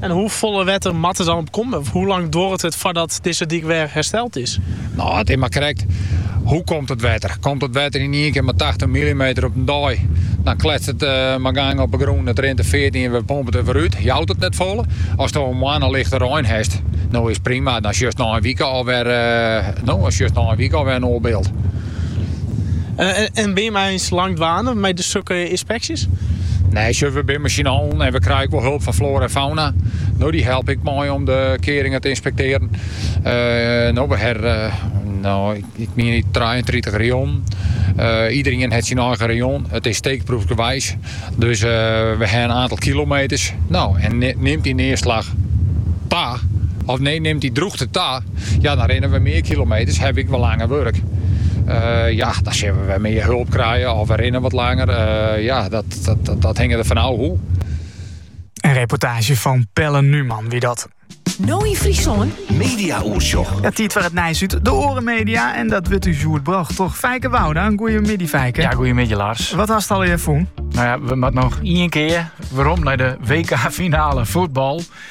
En hoefolle wetter moat der dan op komme? Of hoe lang duorret it foardat dizze dyk wer hersteld is? No, it is mar krekt, hoe komt it wetter? Komt it wetter yn ien kear mei tachtich milimeter op in dei, dan kletst it mei gang op 'e grûn, it rint de feart yn en we pompe it wer út, jout it net folle. Asto in moanne lichte rein hast, no is prima, dan sjochst nei in wike al wer in oar byld. En bin jimme eins lang dwaande mei sokke ynspeksjes? Nee, sjoch, we binne mei syn allen en we krije ek wol hulp fan floara en fauna. No, dy helpe ek mei om de kearingen te ynspektearjen. No, we hawwe, no, ik mien it, 33 rayonnen. Iderien hat syn eigen rayon. It is steekproefsgewijs. Dus we ha in aantal kilometers. No, en nimt dy nearslach ta? Of nee, nimt dy drûchte ta? Ja, dan rinne we mear kilometers, hawwe ik wer langer wurk. ja, dan sille we wer mear hulp krije of we rinne wat langer. ja, dat, dat, dat, dat hinge er van af hoe. Een reportage van Pelle Numan, wie dat. No in Friesland. Media Oersjoch. Het tiet voor het nijs uit de oren media. En dat wordt u Sjoerd Bracht, toch? Fijke Wouda, een goede middag, Fijke. Ja, goede middag, Lars. Wat had het al je voen? Nou ja, we moeten nog één keer waarom naar de WK-finale voetbal.